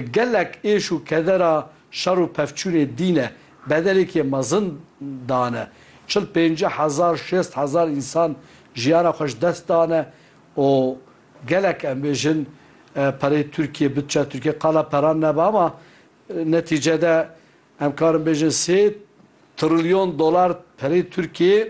Gelek êş û kedera şer û pevçûnê dîne, bedelekê mezin dane. Çil pêncî hezar, şêst hezar însan jiyana xwe ji dest dane û gelek em bêjin pereyê Tirkiyê, butçeya Tirkiyê qala peran nebe ama netîcede em karin bêjin sê trilyon dolar pereyê Tirkiyê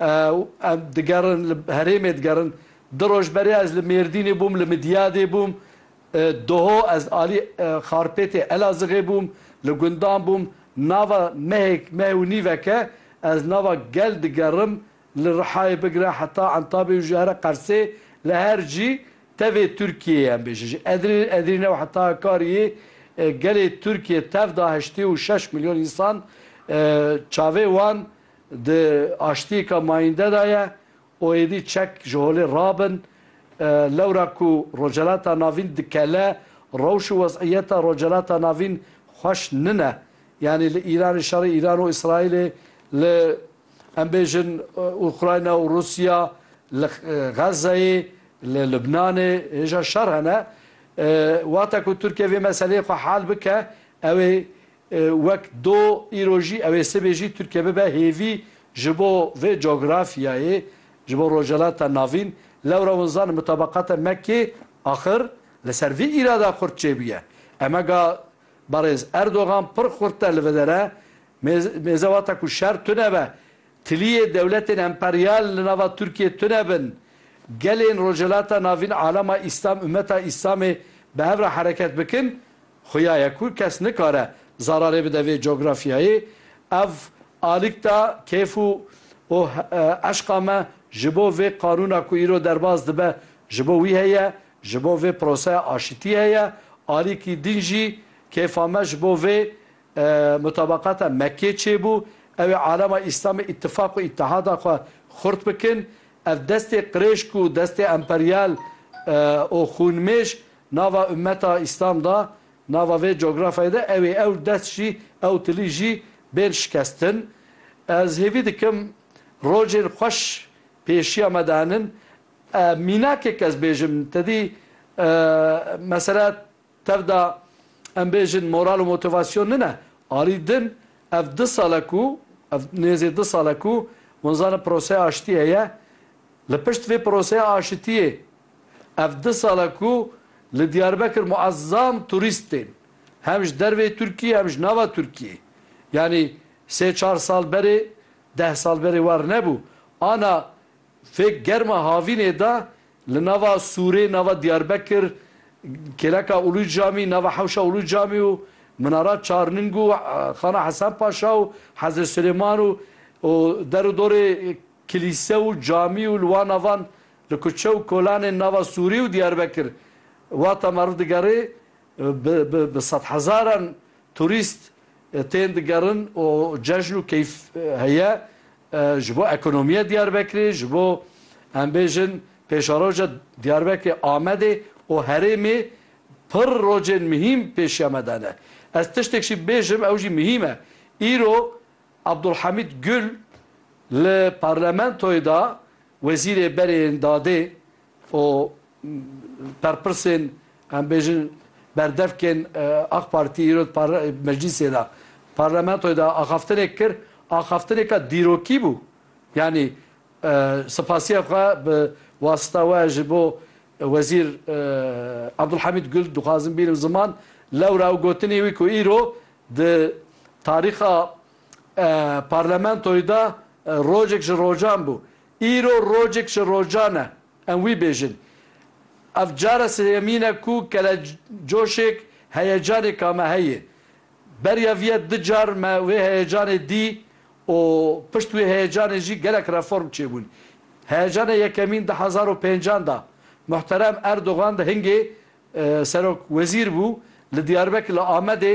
Em digerin li herêmê digerin. Di roj berê ez li Mêrdînê bûm, li Midyadê bûm. Doho ez alî Xarpêtê Elazixê bûm, li gundan bûm. Nava mehêk, meh û nîveke ez nava gel digerim li Rihayê bigire heta Entabê û ji here Qersê li her cî tevê Tirkiyeyê em bêjin. Ji Edirnê û heta Hakariyê gelê Tirkiye tev da heştê û şeş milyon însan çavê wan Di aştiyêka mayînde de ye û êdî çek ji holê rabin. Lewra ku Rojhilata Navîn dikele, rewş û wezîyeta Rojhilata Navîn xweş nine. Yanî li Îranê şerê Îran û Îsraîlê, li em bêjin Ukrayna û Rûsya, li Xezzeyê, li Lubnanê hêja şer hene. Wexta ku Tirkiye vê meseleyê xwe hal bike, ew ê Wek do îro jî ew ê sibê jî Tirkiye bibe hêvî ji bo vê cografyayê, ji bo Rojhilata Navîn. Lewra winzan bi tabaqata Mekkê axir li ser vî îrada xurt çêbûye. Emega Berêz Erdogan pir xurt e li vedere mêze wata ku şer tune be Tiliyê dewletên emperyal li nava Tirkiyê tune bin. Gelên Rojhilata Navîn Alema Îslam Ummeta Îslamê bi hev re hereket bikin, xuya ye ku kes nikare zararê bide vê cografyayê. Ev alîkta kêf û û eşqa me ji bo vê qanûna ku îro derbas dibe ji bo wî heye, ji bo vê proseya aşitiyê heye. Alîkî din jî kêfa me ji bo vê Mutabaqata Mekkê çêbû, ew ê alema Îslamê îtîfaq û îtihada xwe xurt bikin. Ev destê qirêşk û destê emperyal û xûnmêj nava ummeta Îslam da, nava vê cografyayê de ew ê ew dest jî, ew tilî jî bên şikestin. Ez hêvî dikim rojên xweş pêşiya me de henin. Mînakek ez bêjim, tedî mesela Tev da em bêjin moral û motivasyon nine alî din ev du sal e ku ev nêzê du sal e ku hûn zanin proseya aşitî heye. Li pişt vê proseya aşitiyê ev du sal e ku li Diyarbekir muezzam turîst tên hem ji dervê Tirkiyê hem ji nava Tirkiyê. Yanî sê çar sal berê deh sal berê war nebû. Ana fêk germa havînê da Li nava Sûrê nava Diyarbekir, Kêleka Ulu Camî, nava Hewşa Ulu Camî û Minara Çarning û Xana Hesen Paşa û Hezret Silêman û û der û dorê kilîse û camî û li wan navan li kuçe û kolanên nava Sûrê û Diyarbekir wata meriv digerê bi bi bi sedhezaran Turîst tên digerin û cejn û keyf heye ji bo ekonomiya Diyarbekirê, ji bo em bêjin pêşeroja Diyarbekirê, Amedê û herêmê pir rojên mihîm pêşiya me de ne. Ez tiştek jî bêjim ew jî mihîm e. Îro Abdulhamîd Gul li parlamentoyê de Wezîrê berê yên dadê û berpirsên em bêjin berdevkên Ak Partî îro di meclîsê de, parlamentoyê de axaftinek kir, axaftineka dîrokî bû. Yanî sipasiya xwe bi wasita we ji bo Wezîr Abdulhamîd Gul dixwazim bînim ziman, lewra ew gotinê wî ku îro di tarîxa parlamentoyê de rojek ji rojan bû. Îro rocek ji rocan e, em wî bêjin. Ev cara sêyemîn e ku kelecoşêk, heyecanêk a me heye. Beriya vî ye du car me wê heyecanê dî û pişt wê heyecanê jî gelek reform çêbûn. Heyecana yekemîn di hezar û pêncan de Muhterem Erdogan di hingê Serokwezîr bû li Diyarbekir li Amedê,